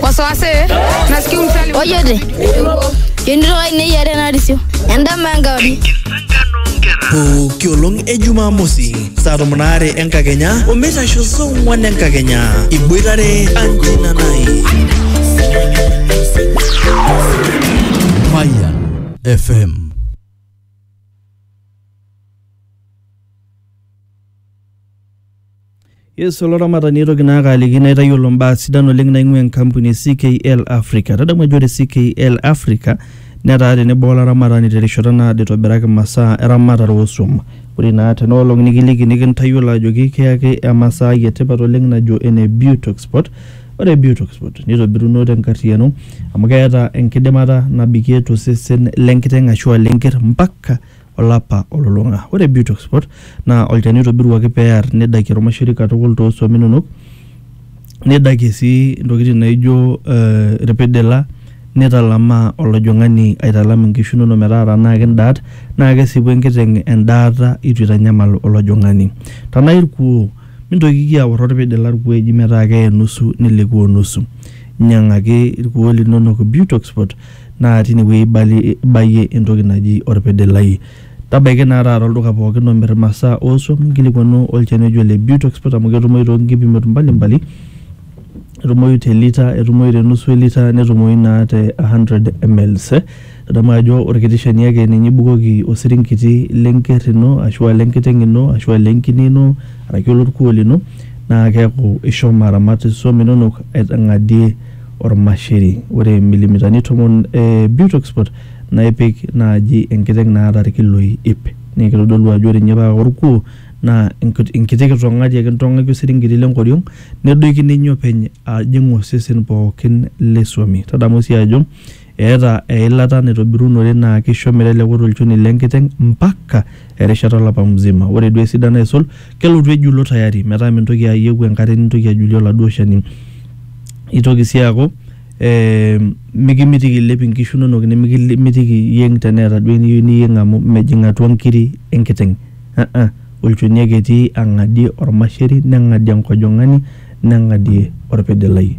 wasiwasi nasikia umsali ojote yonito kainei yare narisio endama enkauri pooki olong e jumamosi saa tomon aare enkakenya omeitasho saa ong'wan enkakenya iboitare anjina nai Mayan FM. Yes, olaramatani aitoki naa kaaliki naitayiolo mbaa sidan oleng naing'ua enkampuni e CKL Africa. Tadamu ajo ore CKL Africa netaa tenebo olaramatani terishata naado eitobiraki masaa eramatare oosuam. Ore naa tena olong nikiliki nikintayiolo ajoki kiyaki emasaai etipat oleng najo ene Butoxport. Ore Butoxport neitobiruno tenkarriyiano amu keeta enkidimata nabikie tosesen lenkiteng ashu aa lenker mpaka olapa olulung'a. Ore Butox Spot naa olchani oitobiruaki pee ear nedakie olmaisuri katukul too suam inonok, nedakie sii intokitin naijo ilpidila, neitalamaa olojong'ani aitalam inkishu inono metaa tenaa kindaat naa kesipu enkiteng' endaata eitu eitanyamal olojong'ani. Tenaa ilkuoo, mintokiki aor olpidila ilkuoo eji metaa keye nusu nilikuoo nusu. Inyang'aki ilkuoo linono Butox Spot. naa tine wueji ibalie ibayie entoki naji orpede lai. Tabaiki naa taata olduka pookin omir imasaa oosuam nkilikwanu olchani oji ole Beauty Expert amu ketumoyu too nkipimot mbali mbali. Etumoyu te lita, etumoyu te nusu e lita, netumoyu naa te hundred mls. Nidamu ajo orkiti shani ake ninye ibukoki osiringiti le nker ino ashu a le nkiteng' ino ashu a le nkine ino araki olorkuo lino naa keeku ishomo aramat isuam inonok aitang'adie... Ormasheri. Ore milimitani tomon e Butexport naa ipik naaji enkiteng naata irkiloi iip. Naa kitodolu ajo ore ninye paa orkuo naa enkiti kitong'ari ake intong'aki osiringiti le nkoriong nedoiki ninye openy ajing osesen pookin le swami. Tadamu sii ajo Eeta eilata naitobirunore naa keisho meteleku tolchoni le nkiteng mpaka erishata olapa mzima. Ore duo esidano aisul, kelotu ejulo tayari metaa mintoki ayieu enkare nintoki ajulie oladuo shani. Eitoki sii aaku ee mikimitiki eilep inkishu inonok nimikimitiki iyieng teneeta duo eniyieu niyieng amu mejing atua nkiri e nkiteng aa olchoni ake etii ang'adie olmasheri neng'adie enkojong'ani neng'adie olpidilai.